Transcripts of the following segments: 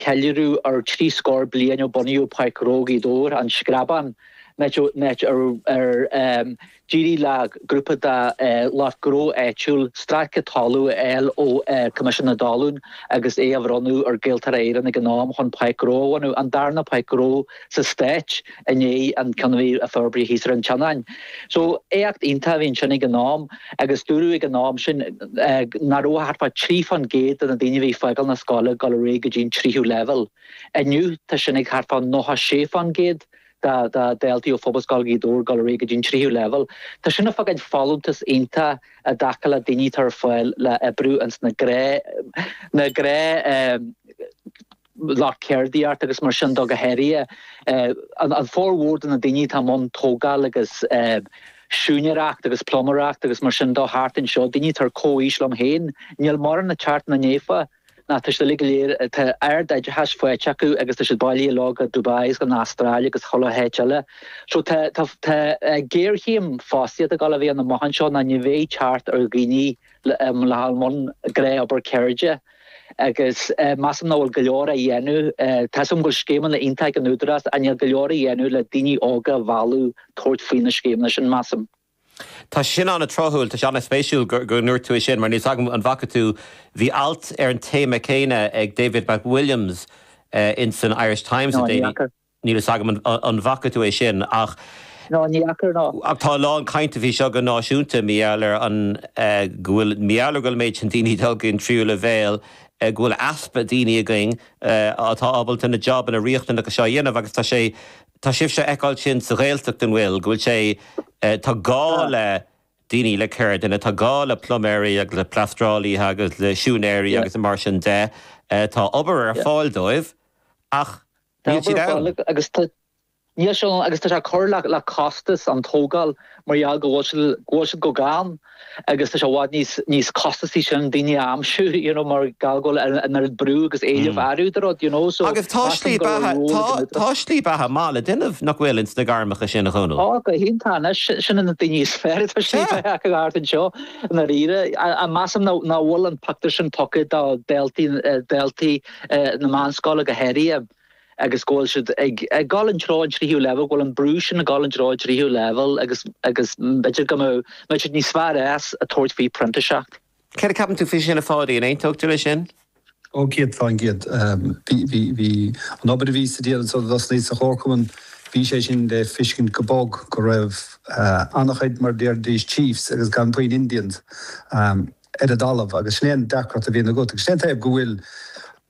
ceiliúradh ar trí scór bliain ó bunaíodh Páirc Ghnó Ghaoth Dobhair, An Screabán, áit ar d'éirigh le grúpa de lucht gnó áitiúil stráice talún a fháil ó Choimisiún na dTalún agus é a bhronnadh ar Ghaeltarra Éireann ag an am chun Páirc Ghnó a bhunú, an darna Páirc Ghnó sa Stát i ndiaidh an chinn a forbraíodh thíos ar an tSionainn. So éacht iontach a bhí ansin ag an am agus dúradh ag an am sin nach raibh ach thart fá trí fán gcéad de na daoine a bhí ag fágáil na scoile ag dul réidh go dtí an tríú leibhéal. Inniu tá sin ag thart fá nócha sé fán gcéad de dhaltaí ó Phobalscoil Ghaoth Dobhair ag dul réidh go dtí an tríú leibhéal. Tá sin ag fágáil folúntas iontach i dtaca le daoine atá ar fáil le oibriú ins na gné, lucht ceardaíochta agus mar sin do go háirithe. An formhór de na daoine atá i mbun tógáil agus siúinéireacht agus pluiméireacht agus mar sin do thart anseo, daoine atá ar comhaois liom féin, níl mórán ag teacht ina ndiaidh, ná tá siad uilig, tá ardoideachas faighte acu agus tá siad bailithe leo go Dubai agus go an Astráil agus chuile háit eile. So tá géarchéim fostaíochta ag dul a bheith ann amach anseo ná ní bheidh teacht ar dhaoine le dhul i mbun gná obair ceirde. Agus measaim nach bhfuil go leor á dhéanamh. Tá 's agam go bhfuil scéimeanna iontacha ag an Údarás ach níl go leor á dhéanamh le daoine óga a mhealladh tabhairt faoi na scéimeanna sin, measaim. Tá sin an-tráthúil, tá sé an-spéisiúil go ndúirt tú é sin, mar níl 's agam an bhfaca tú, bhí alt ar an téama céanna ag David McWilliams in san Irish Times le déanaí. Níl fhios agam an bhfaca tú é sin ach. Ná ní fhaca ná. Ach tá a lán cainte faoi seo go náisiúnta, mar gheall ar an go bhfuil mar gheall ar go bhfuil an méid sin daoine ag dul go an tríú leibhéal, go bhfuil easpa daoine againn atá ábalta na jobanna riachtanacha seo a dhéanamh agus tá sé tá sibhse ag feiceáil sin sa Ghaeltacht an bhfuil go bhfuil sé tá gá le daoine le ceirdeanna, tá gá le pluiméirí agus le pleastrálaithe agus le siúinéirí agus mar sin de. Tá obair ar fáil dóibh ach. Níl siad ann. Níl siad ann agus tá sé ag cur le costas an tógáil mar gheall go bhfuil siad chomh gann agus tá sé i bhfad níos costasaí ansin daoine a aimsiú you know mar gheall go bhfuil an oiread brú agus éileamh ar a leithéid de rud you know so Agus tá slí beatha tá tá slí beatha maith le déanamh nach bhfuil ins na gairmeacha sin a Dhónaill. Tá go hiontach anois sin an daoine is fearr tá slí beatha acu thart anseo i ndáiríre. Measaim nach bhfuil an pictiúr sin tugtha do dhaltaí dhaltaí na meánscoile go háirithe agus go bhfuil siad ag dul an treo an tríú leibhéal, go bhfuil an brú sin ag dul an treo an tríú leibhéal agus b'fhéidir go mbeadh siad níos fearr as ag tabhairt faoi phrintíseacht. Céard a ceapann tú faoi sin a Pháidí, an aontófá leis sin? Ó céad fán gcéad. Bhí an obair a bhíos-sa ag déanamh sular thosnaíos sa Chomharchumann, bhí sé sin le fiscint go bog go raibh an-chuid, mar a déarfaidís, chiefs agus gan puinn Indians. ar an dtalamh agus sin é an deacracht a bhíonn agat agus sin é an taobh go bhfuil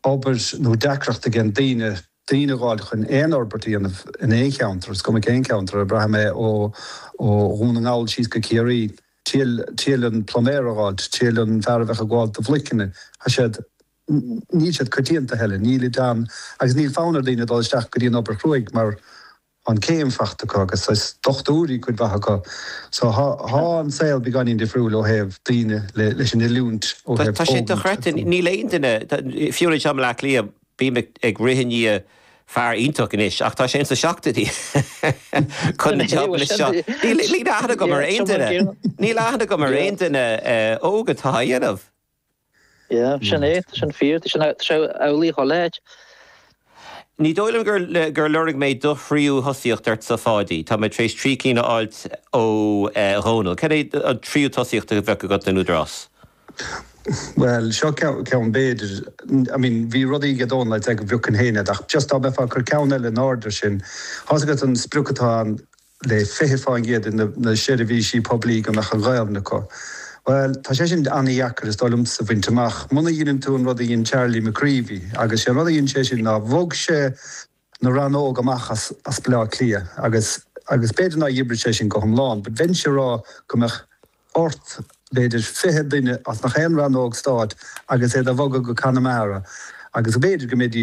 obair nó deacracht ag an daoine daoine a dh'fháil chun aon fhorbairt a dhéanamh in aon cheantar, is cuma cén ceantar, ab braithim é ó ó Dhún na nGall síos go Ciarraí, triail triail an pluiméir a dh'fháilt, triail an fear a bheadh ag gabháil do bhloiceanna, tá siad níl siad coitianta a thuilleadh, níl siad ann agus níl fonn ar daoine dul isteach go dtí an obair chruaidh mar Tá an chéim faighte acu agus is dochtúirí cuid mhaith acu so tá an saol beagáinín difriúil ó thaobh daoine leis an oiliúint ó thaobh tógaint. Tá sé dochreidte, níl aon duine, fiú anois i mBleá Cliath bím ag rith i ndiaidh fear iontach anois ach tá sé ins na seachtóidí chun na job anois seo, níl aithne agam ar aon duine, níl aithne agam ar aon duine óg atá á dhéanamh. Yeah, sin é, sin fíor, sin amhlaidh dhá leithéid. Ní dóigh liom gur lorg mé do thríú tosaíocht ortsa, a Pháidí. Tá mé tar éis trí cinn a fháilt ó Dhónall. Cad é an tríú tosaíocht a bheadh agat in Údarás? Bhuel, seo ceann, b'fhéidir. I mean, bhí rudaí aige Dónall, I'd say, go bhfeiceann éinne, ach just dá mbeifeá ag cur ceann eile in airde sin, tá a fhios agat an sprioc atá ann le 20% des na seirbhísigh poiblí go mbeadh an Ghaelainn acu. Bhuel, tá sé sin an-deacair, is dóigh liomsa, a bhaint amach, muna dheineann tú an rud a dhein Charlie McCreevy, agus sé an rud a dhein sé sin ná bhog sé na rannóg amach as Baile Átha Cliath agus agus b'fhéidir nár oibrigh sé sin go hiomlán, but bheinnse a rá go mbeadh ort b'fhéidir fiche duine as gach aon rannóg stáit agus iad a bhogadh go Conamara agus b'fhéidir go mbeidís